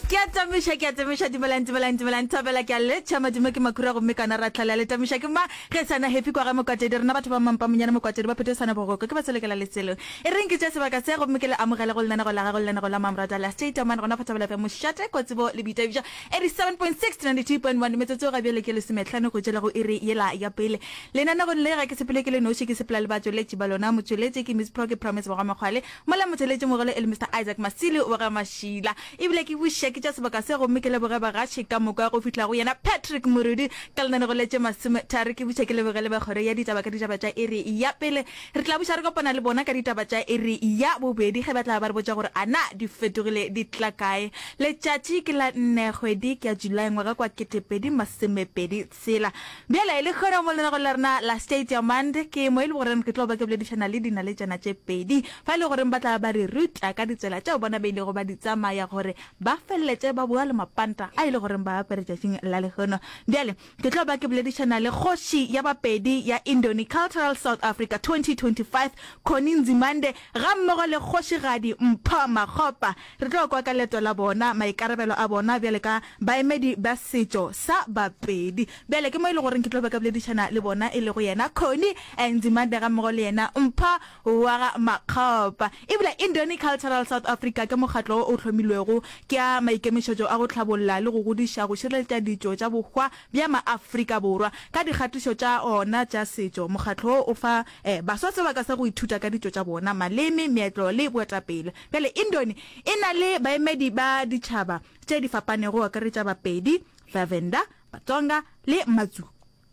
ke a tamiša ke a tamiša dumelang dumelang dumelang thabela ke a letšha madimo ke makura gomme kana ra tlhala le tamiša ke ma ge sana happy kwa ga mokwatedi rena batho ba mampa monyane mokwatedi ba phete sana bogoko ke ba selekela letselong e reng ke tša sebaka se gomme ke le amogele go lenanego la gago lenanego la mamrata la state amane gona fatabela bja mošate kwa tsebo le boitabiša 87.6 92.1 metsotso ga bjale ke lesometlhano go tšela go iri yela ya pele lenanegong le ga ke sepele ke le noši ke sepela le ba tšweletši ba lona motšweletši ke miss proke promise bogwa makgwale Mola motheeletši mogolo e le Mister Isaac Masili wa ga Mashila. E bile ke bušiša ke tša sebaka se gomme ke leboge bagaši ka moka go fihla go yena Patrick Morudu ka lenane go letše masome thari ke buša ke leboge le ba kgoro ya ditaba ka ditaba tša iri ya pele. Re tla buša re kopana le bona ka ditaba tša iri ya bobedi ge ba tla ba re botša gore a na di fetogile di tla kae. Letšatši ke la nne kgwedi ke ya July ngwaga kwa kete pedi masome pedi Tsela. Bjale, le kgwere mo lenagong la rena la States ya Monday, ke mo e le goreng ke tlo ba ke boledišana le dinaletšana tše pedi, fa e le goreng ba tla ba re rutla ka ditsela tšeo bona ba ilego ba di tsamaya gore ba feleletše ba boa le mapanta a e le goreng ba a apere tšatšing la lehono. Bjale, ke tlo ba ke boledišana le kgoši ya Bapedi ya Indoni Cultural South Africa 2025, Connie Nzimande, gammogo le Kgošigadi Mpho Makgopa, Re tlo kwa ka leeto la bona, maikarabelo a bona bjale ka baemedi ba setšo sa Bapedi. Bjale ke mo e le goreng ke tlo be ka boledišana le bona e lego yena Connie Nzimande gammogo le yena Mpho wa ga Makgopa. Ebile Indoni Cultural South Africa ke mokgatlo wo o hlomilwego ke a maikemišetšo a go hlabolla le go godiša go šireletša ditšo tša bohwa bja Maafrika Borwa ka dikgatišo tša ona tša setšo. Mokgatlo wo o fa baswa sebaka sa go ithuta ka ditšo tša bona, maleme, meetlo le boetapele. Bjale Indoni e na le baemedi ba ditšhaba tše di fapanego go akaretša Bapedi, Bavenda, Batsonga le Matsu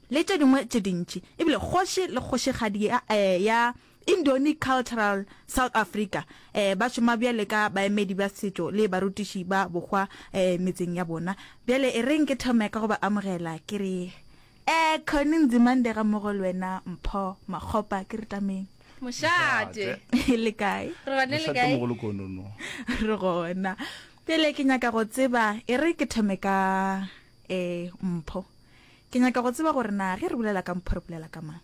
le tše dingwe tše dintši. E bile kgoši le kgošigadi ya ya Indoni Cultural South Africa ba šoma bjale ka baemedi ba setšo le barutiši ba bohwa metseng ya bona. Bjale e reng ke thome ka go ba amogela ke re Eh Connie Nzimande ga mogo le wena Mpho Makgopa ke re tameng. Mošate. Le kae? Re gone le kae? Mošate mogolo konono. Re gona. Pele ke nyaka go tseba e re ke thome ka eh Mpho. Ke nyaka go tseba gore na ge re bulela ka Mpho re bulela ka mang?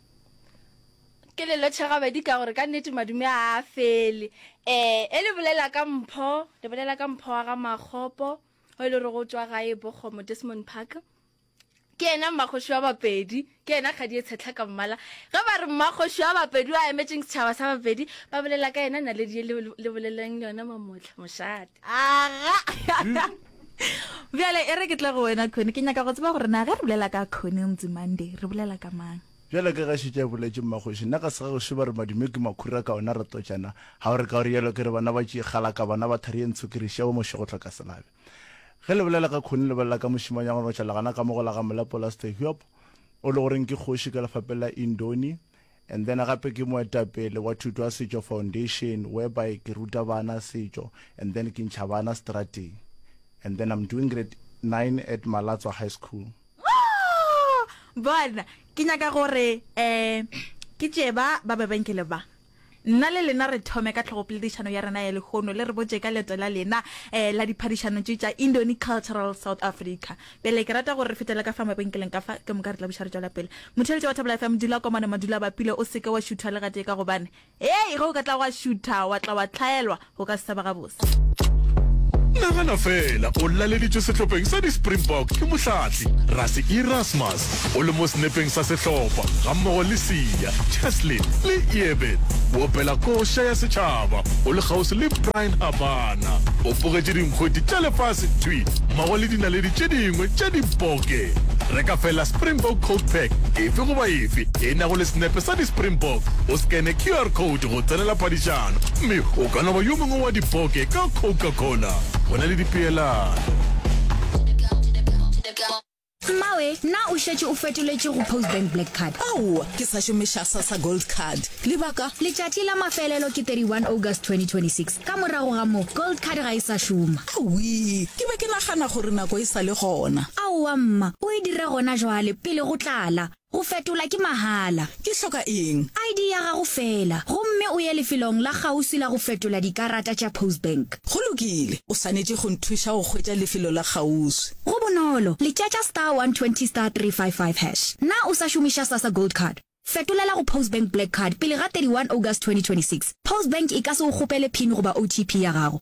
Ke le lotšha gabedi ka gore ka nnete madume a a fele. Eh e le bulela ka Mpho, le bulela ka Mpho wa ga Makgopo o e le gore go tšwa gae Bokgomo Desmond Park. Ke yena mmakgoši wa Bapedi, ke yena kgadi e tshetlha ka mmala. Ge ba re mmakgoši wa Bapedi o a emetšeng setšhaba sa Bapedi, ba bolela ka yena naledi ye le, le boleleng yona mamohla, mošate. Aga! Bjale e re ke tle go wena Connie, ke nyaka go tseba gore na ge re bolela ka Connie Nzimande, re bolela ka mang? Bjale ka ge a šetše a boletše, mmakgoši, nna ga se ga gešo ba re madimo ke makhura ka ona re totšana, ga o re ka o re yalo ke re bana ba tšie kgalaka, bana ba thari e ntsho ke re šiya bo mošego tlhokaselabe. Ge le bolela ka khoni le bolela ka mošemanyana wa notša legana ka mo go la ga Molapolasete Hiob, o le goreng ke kgoši ka lefapeng la Indoni, and then gape ke moetapele wa Thuto ya Setšo Foundation whereby ke ruta bana setšo and then ke ntšha bana strateng and then I'm doing grade nine at Malatswa High School. Bona, ke nyaka gore um ke tšee ba ba bebenkele ba. Nna le lena re thome ka tlhogopoledišano ya rena ya lehono le re botše ka leeto la lena um la diphadišano tše tša Indoni Cultural South Africa. Pele ke rata gore re fetele ka fa mabenkeleng ka fa, ke moka re tla buša re tšwela pele. Motheeletši wa Thabela FM, dula kwa mane Madula-Bapile, o se ke wa šutha le gatee ka gobane, hei, ge o ka tla wa šutha, wa tla wa hlaelwa. o ka se thaba gabotse. Nagana fela o laleditšwe sehlopheng sa di-springbok ke mohlatli rase erasmus o le mo senepeng sa sehlopha gammogo le sia cheslin le eben o opela koša ya setšhaba o le kgauswi le brian habana o bogetše dinkgweti tša lefase thwi mmogo le dinaledi tše dingwe tša diboke reka fela springbok coat pack efe goba efe e nago le senepe sa di-springbok o scane qr code go tsenela padišano, mme o ka no ba yo mongwe wa dipoke ka Coca-Cola. Go na le dipeelano. Mmawe, na o šetše o fetoletše go Postbank Black Card? Aowa, ke sa šomiša Sassa Gold Card. Lebaka? Letšatši la mafelelo ke 31 August 2026. Ka morago ga moo, Gold Card ga e sa šoma. Awii, ke be ke nagana gore nako e sa le gona. Aowa mma, o e dira gona jwale, pele go tlala. Go fetola ke mahala. Ke hloka eng? ID ya gago feela, gomme o ye lefelong la kgauswi la go fetola dikarata tša Postbank. Go lokile. O swanetše go nthuša go hwetša lefelo la kgauswi. Go bonolo, letšatša star 120 star 355 hash. Na o sa šomiša Sasa Gold Card? Fetolela go Postbank Black Card pele ga 31 August 2026. Postbank e ka se go kgopele pin goba OTP ya gago.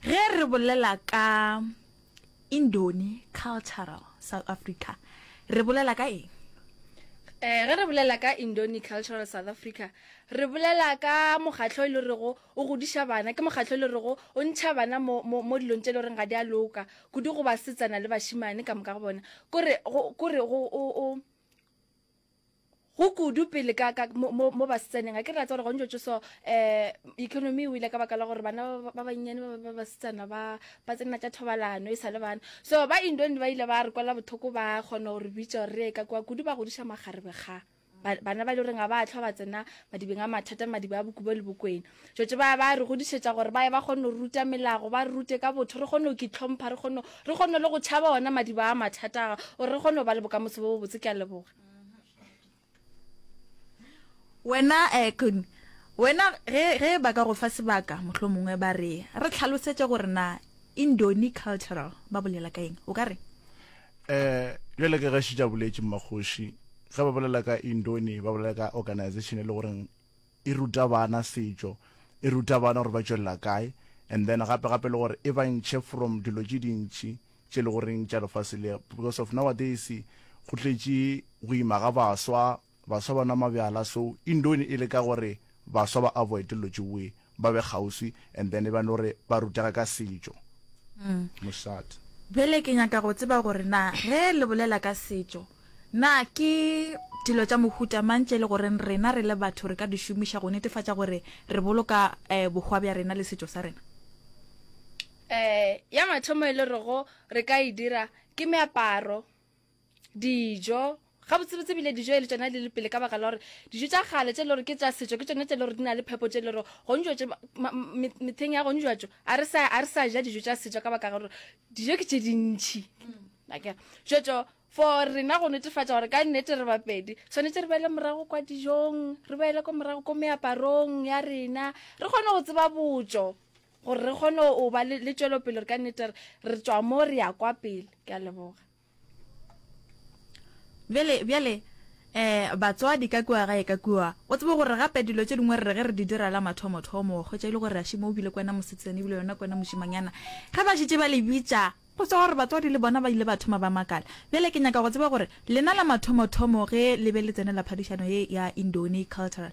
Ge re bolela ka Indoni Cultural South Africa, re bolela ka eng? Eh, ge re bolela ka Indoni Cultural South Africa, re bolela ka mokgatlo e le rego o godiša bana, ke mokgatlo e le rego o ntšha bana mo, mo, mo dilong tše le goreng ga di a loka, kudu go basetsana le bašimane ka moka go bona, kore, go, kore go, o, o. go kudu pele ka ka mo mo mo ba setsaneng ga ke rata gore gontse tso so eh economy o ile ka baka la gore bana ba bannyane ba ba basetsana ba ba tsena tša thobalano e sa le bana so ba indoni ba ile ba re kwala bothoko ba kgona gore bitša gore re ka kwa kudu ba godiša magarebe ga bana ba le goreng ga ba tlhwa ba tsena madibeng a mathata madibe a bokubo le bokwena Tšoče ba ba re godišetša gore ba ye ba kgone go ruta melago, ba re rute ka botho, re kgone go kitlhompha, re kgone, re kgone le go tšhaba ona madiba a mathata a, gore re kgone go ba le bokamoso bo bobotse. Ke a leboga. Wena, eh, Kun, wena, ge, ge ba ka go fa sebaka, mohlomongwe ba re, re tlhalosetše gore na Indoni cultural ba bolela ka eng, o ka re? Eh, bjale ka ge šetša boletše, Mmakgoši, ge ba bolela ka Indoni, ba bolela ka organization e le goreng e ruta bana setšo, e ruta bana gore ba tšwelela kae and then gape gape le gore e ba ntšhe from dilo tše dintši tše e le goreng tša lefase le because of nowadays go tletše go ima ga baswa, baswa ba nwa mabyala so e ndo e le ka gore baswa ba avoide dilo tše we ba be kgauswi and then e ba no re ba rutega ka setšo. Mosadi. Bjale ke nyaka go tseba gore na ge le bolela ka setšo Na ke dilo tša mohuta mang tše e le goreng rena re le batho re ka di šomiša go netefatša gore re boloka bohwa bja rena le setšo sa rena? Ya mathomo e le rego re ka e dira ke meaparo, dijo, gabotsebotse ebile dijo e le tšona di le pele ka baka la gore dijo tša kgale tše e le gore ke tša setšo ke tšona tše e le gore di na le phepo tše e le gore gone jwatše mehleng ya gone jwatše a re sa ja dijo tša setšo ka baka gore dijo ke tše dintšhi. Akere jwetšo. For rena go netefatša gore ka nnete re bapedi, tshwanetse re boele morago kwa dijong, re boele ko morago ko meaparong ya rena, re kgone go tseba botšo gore re kgone go ba le, le tšwelopele gore ka nnete re, re tšwa mo re ya kwa pele. Ke a leboga. Bjale, bjale, eh, batswadi ka kua gae, ka kua, o tsebe gore gape dilo tše dingwe re re ge re di dira la mathomothomo, wa hwetša e le gore ašii mo o bile ko wena mosetsana ebile yona ko wena mošemanyana, ge ba šetše ba le bitša, Go tšwa gore batswadi le bona ba ile ba thoma ba makala. Bjale ke nyaka go tseba gore lena la mathomothomo ge le be le tsenela phadišano ye ya Indoni Cultural,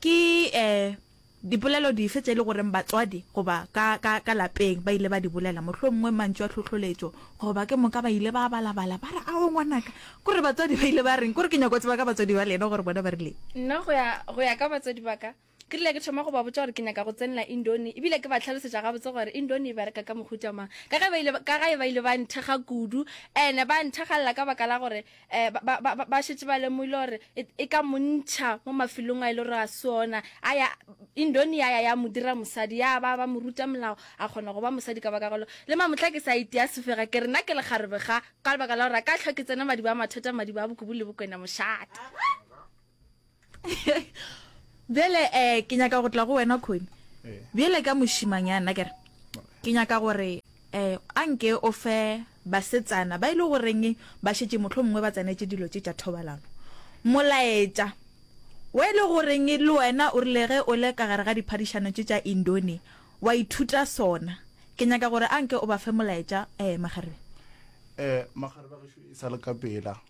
ke dipolelo dife tše e le goreng batswadi goba ka, ka, ka lapeng ba ile ba di bolela, mohlomongwe mantšu a tlhohloletšo goba ke moka ba ile ba balabala ba re, Ao, ngwanaka! Kore batswadi ba ile ba reng? Kore ke nyaka go tseba ka batswadi ba lena gore bona ba rileng. Nna go ya, go ya ka batswadi ba ka, Ke rile ke thoma go ba botša gore ke nyaka go tsenela Indoni ebile ke ba hlalosetša gabotse gore Indoni e bereka ka mohuta mang ka ge ba ile, ka ge ba ile ba nthekga kudu and ba nthekgalela ka baka la gore eh, ba, ba, ba, ba šetše ba lemogile gore e, e ka mo ntšha mo mafelong a ile gore a se ona a ya Indoni ya ya ya mo dira mosadi ya ba ba mo ruta molao a kgona go ba mosadi ka baka golo le mamotla ke sa itea sefega ke re nna ke lekgarebe ga ka lebaka la gore a ka tlhwa ke tsena madiba a mathata madiba a bokubu le bokwena mošate bjale um ke nyaka go tla go wena khoni eh. bjale ka mošimanyana kere ke nyaka gore um a nke o fe basetsana ba e le goreng ba šetse motlho mongwe ba tsenetse dilo tse tša thobalano molaetša wa e le goreng le wena o rile ge o le ka gare ga diphadišano tse tša indone wa ithuta sona ke nyaka gore a nke o ba fe molaetša um magarebe um magarebe gešo e sa le ka pela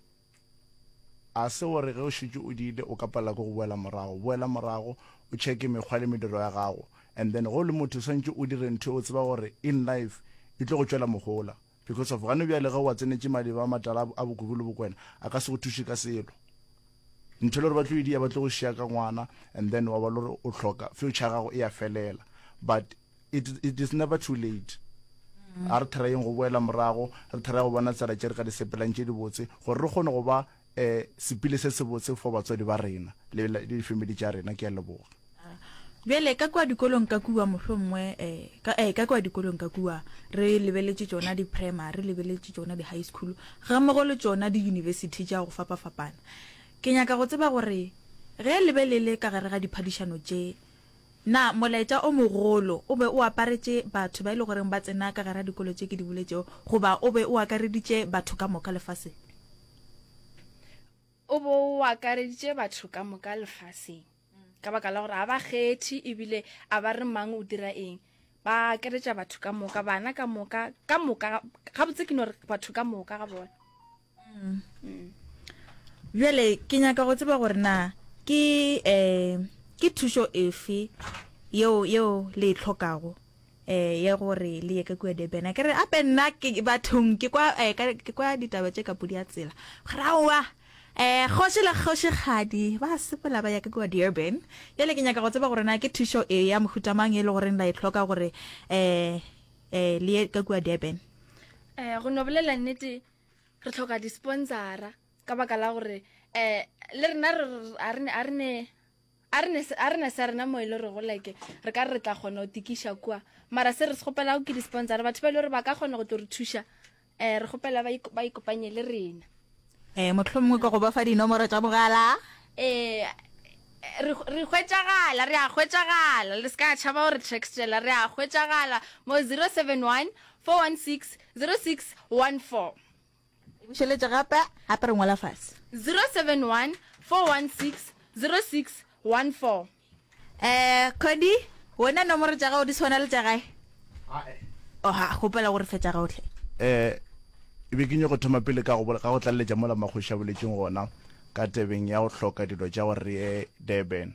A se gore ge o šetše o diile o ka palela ke go boela morago? Boela morago o checke mekgwa le mediro ya gago and then ge o le motho o swanetše o dire ntho e o tseba gore in life e tlo go tšwela mohola because of gane bjale ge o a tsenetše madiba a matala a Bokubu le Bokwena a ka se go thuše ka selo. Ntho le gore ba tlo e dia ba tlo go šiya ka ngwana and then wa ba le gore o hloka future ya gago e a felela but it, it is never too late a re therayeng go boela morago re theraye go bona tsela tše re ka di sepelang tše dibotse gore re kgone go ba um sepile se sebotse for batswadi ba rena le difamily tša rena ke a leboga bjale ka kwa dikolong ka kua mohlongwe um eh, ka eh, kwa dikolong ka kua re lebeletše tšona di-primary re lebeletše tšona di-high school ga mmogo le tšona di-university tša go fapa-fapana ke nyaka go tseba gore ge lebelele ka gare ga diphadišano tše Na molaetša o mogolo o be o aparetše batho ba e le goreng ba tsena ka gare ga dikolo tše ke di boletšego, goba o be o akareditše batho ka moka lefaseng? O be o akareditše batho ka moka lefaseng, ka baka la gore ga ba kgethe e bile ga ba re mang o dira eng. Ba akaretša batho ka moka, bana ka moka, ka moka, gabotse ke no re batho ka moka ga bona. mm. bjale ke nyaka go tseba gore na ke um ke thušo efe yeo yeo le e tlhokago eh ya gore le ye ka kua Durban a kere ape nna ke bathong ke kwa eh, ke kwa ditaba tše ka podi ya tsela grawa eh kgoši le kgošigadi ba sepela ba ya ka kua Durban bjale ke nyaka go tseba gore na ke thušo e ya mohutamang e le goreng la e tlhoka gore eh eh le ye ka kua Durban eh go no bolela nnete re tlhoka disponsora ka baka la gore um le rena a re ne sa rena mo e le gore go like re ka re re tla kgona go tikiša kua mara se re se gopelago ke disponsora batho ba e le gore ba ka kgona go tlo re thuša um re gopela ba ikopanye le rena um motlho mongwe ka go ba fa dinomoro tša mogala um re hwetšagala re a hwetšagala le se ka tšhaba gore trextela re a hwetšagala mo 071 416 0614. E bušeletše gape, gape re ngwala fase. 0714160614. Eh, Cody, wena nomoro tša gago di swana le tša gae? Ae. Oh, ha, kgopela gore fe tša gago hle. Eh, e be ke nyoko thoma pele ka go, ka go tlaleletša mola Makgoši a boletšeng gona ka tebeng ya go hloka dilo tša gore re ye Durban.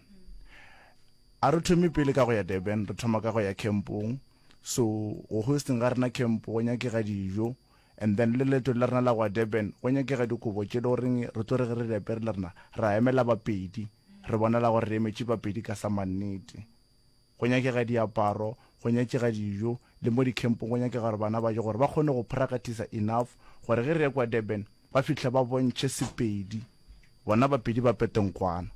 A re thome pele ka go ya Durban, re thoma ka go ya kempong. So go hosting ga rena camp go nyakega dijo and then le leeto la rena la go ya Durban go nyakega dikobo tše le goreng re tlo re ge re di apere le rena ra emela ba pedi re bonala gore re emetše ba pedi ka sa mannete. Go nyakega diaparo, go nyakega dijo le mo di campong go nyakega gore bana ba je gore ba kgone go prakatisa enough gore ge re ya kwa Durban ba fihla ba bontšhe Sepedi bona ba pedi ba peteng kwana.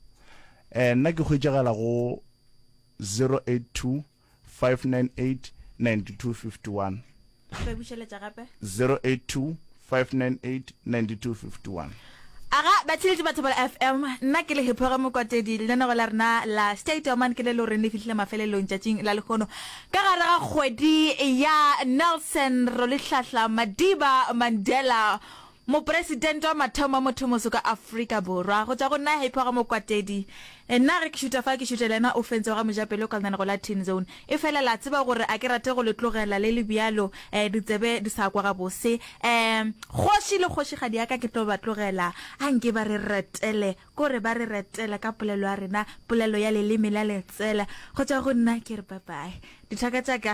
Eh nna ke hwetšagala go zero eight two 598 9251. Re bušeletša gape. 082 598 9251. Aga batheeletši ba Thobela FM, nna ke le Hiphoge Mokwatedi. Lenaneo la rena la Stay Dormant ke le le goreng le fihlile mafelelong tšatšing la lehono ka gare ga kgwedi ya Nelson Rolihlahla Madiba Mandela. Mopresidente wa mathomo wa mothomoso ka Afrika Borwa go tšwa go nna Happy wa ga Mokwatedi, Nna ge ke šuta fa ke šuta le yena o fentse wa ga Mojapelo Kaltana go la Tin Zone. E fela la tseba gore a ke rate go le tlogela le le bjalo eh ditsebe di sa kwa gabose eh kgoši le kgošigadi ya ka ke tlo ba tlogela a nke ba re retele ko re ba re retele ka polelo ya rena polelo ya leleme la letsela go tšwa go nna ke re bye bye dithaka tša ka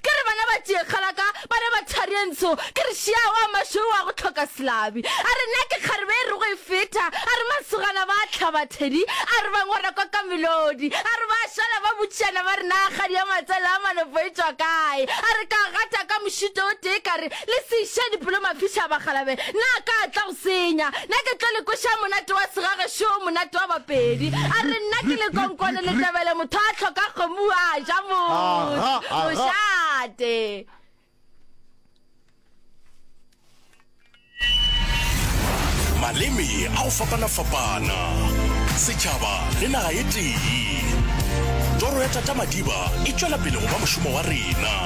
Ke re bana ba tšee kgala ka, bana ba thari e ntsho, ke re šea wa mašweu wa go tlhoka selabi. A re na ke kgarebe e rego e feta, a re masogana ba hlaba thedi, a re ba ngora kwa ka melodi, a re ba šala ba botšišana ba re na kgadi ya matsele a malopo e tšwa kae, a re ka gata ka mošito o tee ka re Le seša dipelo mafiša bagalabe, na a ka tla go senya? Na ke tlo le kweša monate wa segage šo, monate wa bapedi? A re nna ke lekonkwane le tebele, motho a tlhoka kgomo a ja mošate. Maleme a go fapana-fapana, setšhaba le naga e tee. Toro ya Tata Madiba e tšwela pele go ba mošomo wa rena.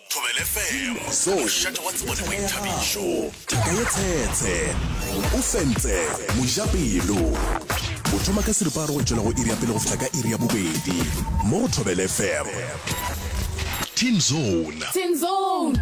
Thobela FM, mošate wa tsebo le boithabišo. Thaka ye tshetshe. O fentse. Mojapelo. O thoma ka seripa a re go tšwela go iri ya pele go fihla ka iri ya bobedi. Mo go Thobela FM. Teen Zone. Teen Zone.